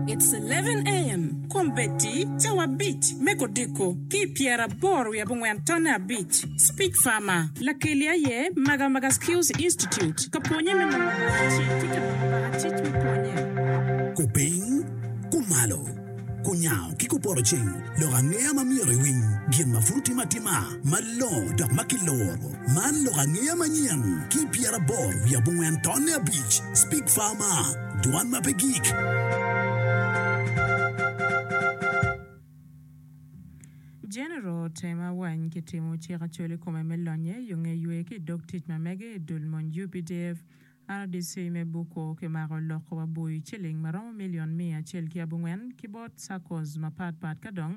It's eleven AM Kom Betty, Cawa abic me kodiko ki i pyeraboro wiye abongwen tonne abic Speech Farmer, Lakeli aye Magamaga Skills Institute ka pwonye me nongo baka ci ki ka nongo baka cic me pwonye. Kupiny, kumalo, kunyango ki kupoto cing lok angeya ma myero iwiny gin ma pud otim atima malongo dok ma kiluro. Man lok angeya manyen ki i pyeraboro wiye abongwen tonne abic Speech Farmer, Dwan ma pe gik. Jenero otemo awany ki timo cik acol i kome me lonnye yo nge ywe ki i dog tic ma mege i dul mony UPDF. RDC me Buko kimako loko wa bui ciling ma romo milion miya acel ki abongwen ki bot SACCOs ma pat pat ka dong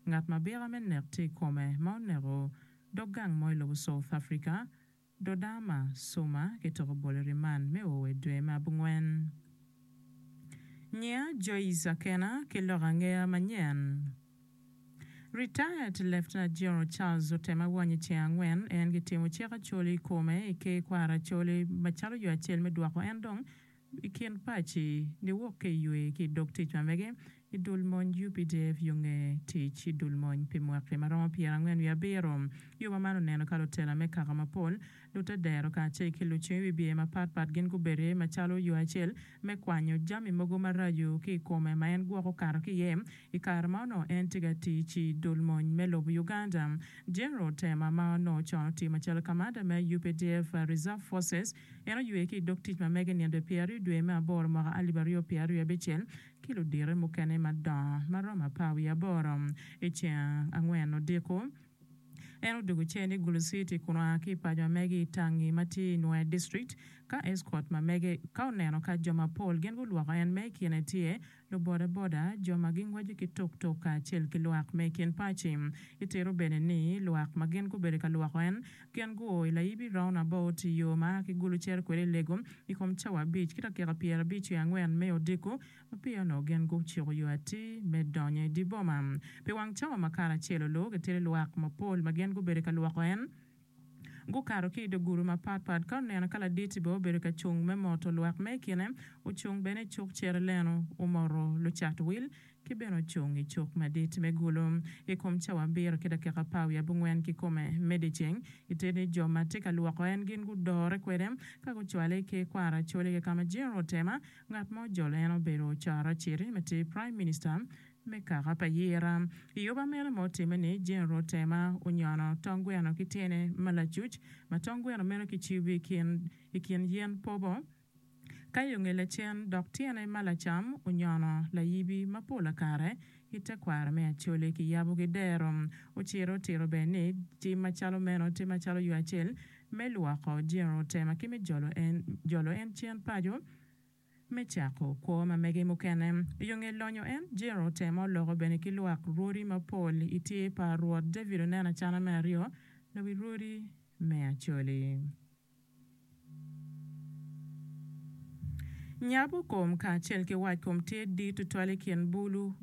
ngat ma bika me nek tye i kome ma oneko dog gang mo i lobo South Africa Dodoma, Suma ki tok obolo riman me o i dwe me abongwen. Nyiya Joyce Akena ki lok angeya manyen. Retired Lieutenant General Charles Otema Wany i ceng angwen en ki timo cik Acholi i kome i ker kwaro Acholi macalo yo acel me dwoko en dong I kin paci, giwok ki i ywe ki i dog tic ma mege i dul mony updf yo nge tic i dul mony pi mwaki ma romo pyerangwen wiye abiro. Yo ma man oneno ka lutela me kaka mapol, lutedero kacel ki lucung i wi bye mapat pat gin gubedo iye macalo yo acel me kwanyo jami mogo maraco ki i kome ma en gwok okato ki iye i kare ma onongo en tye ka tic i dul mony me lobo Uganda. General Tema ma onongo con otiyo macalo kamanda me updf Reserve Forces En oywe ki i dog tic ma mege nino pyeraryo dwe me aboro mwaka alip aryo pyeraryo abicel ki ludite mukene madongo ma romo apar wiye aboro. I ceng angwen odiko, en odwogo cen i Gulu City kun oa ki i paco ma mege i Tangi ma tye i Nwea District ka eskot ma mege ka oneno ka jo mapol gin gulwoko en ma i kine tye lubodaboda, jo ma gingweco ki tuktuk kacel ki lwak me i kin paci. Itito bene ni lwak ma gin gubedo ka lwoko en gin guo i layibi roundabout i yo ma a ki Gulu cito kwede i Lego i kom cawa abic ki dakika pyerabicc wiye angwen me odiko ma peya onongo gin gucuko yo atir me donyo i dye boma. Pi wang cawa ma karacelo, luwok itito lwak mapol ma gin gubedo ka lwoko en. Gukato ki i dye gudo mapat pat. Ka oneno ka laditi bene obedo ka cung me moto lwak me i kine, ocung bene i cuk cere leno, omoto lucat wil, ki bene ocung i cuk madit me gulo. I kom cawa abiro ki dakika apar wiye abongwen kikome me dyeceng, i te ni jo ma tye ka lwoko en gin gudore kwede ka gucwale ki i kwaro acoli kika ma General Temer, ngat ma ojolo en obedo Ocara Aciri ma tye Prime Minister Me kaka pa Yira, i oba mene ma otimme ni, Jeneral Tema onyono tong gweno ki tyene ma lacuc, ma tong gweno meno kicibo i kin i kin yen pobo, ka i onge lacen, dok tyene ma lacam onyono layibi ma pola kare i tekwaro me Acholi kiyabo ki dero. Ociro otito bene ni, tim macalo meno tye macalo yo acel me lwoko Jeneral Tema ki me jolo en jolo en cen paco. Me cako, kwo ma mege mukene i yo nge lonyo en Jiro otemo loko bene ki lwak rwodi mapol i tye pa Rwot David oneno acana me aryo lawi rwodi me Acoli. Nyabu kom kacel ki wac kom tye dit tutwal i kin bulu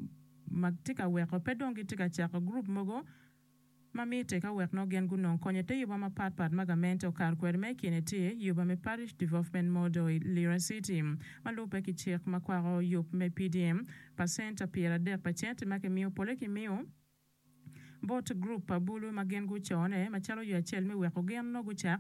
ma tye ka weko pe dong gitye ka cako gurup mogo. ma mitte ka wek nongo gin gunong konyo i te yuba mapat pat ma gamente okato kwede ma i kine tye yuba me Parish Development Model i Lira City ma lubbe ki cik ma kwako yub me PDM pa centa pyer adek pa centi ma ki miyo pole ki miyo bot group pa bulu ma gin gucone macalo yo acel me weko gin nongo gucak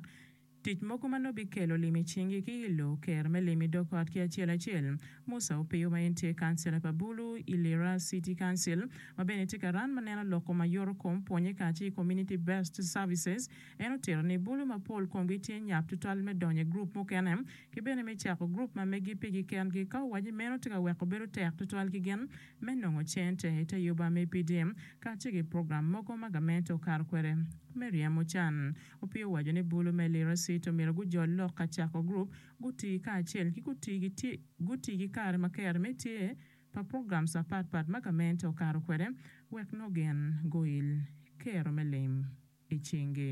Tic mogo ma nongo bikelo lim i cingi ki i lo Ker me lim i dog ot ki acel acel. Musa Opiyo ma en tye kancila pa Bulu i Lira City Council ma bene tye ka ran ma neno loko ma yoto kom pwonye kacel ki Community Based Services en otito ni Bulu ma pol komgi tye nyap tutwal me donyo i gurup mukene ki bene me cako gurup ma megi pigi kengi ka owach ni meno tye ka weko bedo tek tutwal ki gin me nongo cente i te yoba me PDM kacel ki program mogo ma gamente okato kwede me ryemo can. Opio owaco ni bulu me lirisit omyero gujol lok ka cako gurup, guti kacel, ki guti ki kare ma kero me tye pa programs apat pat ma gamente okato kwede wek nongen goil kero me lim i cingi.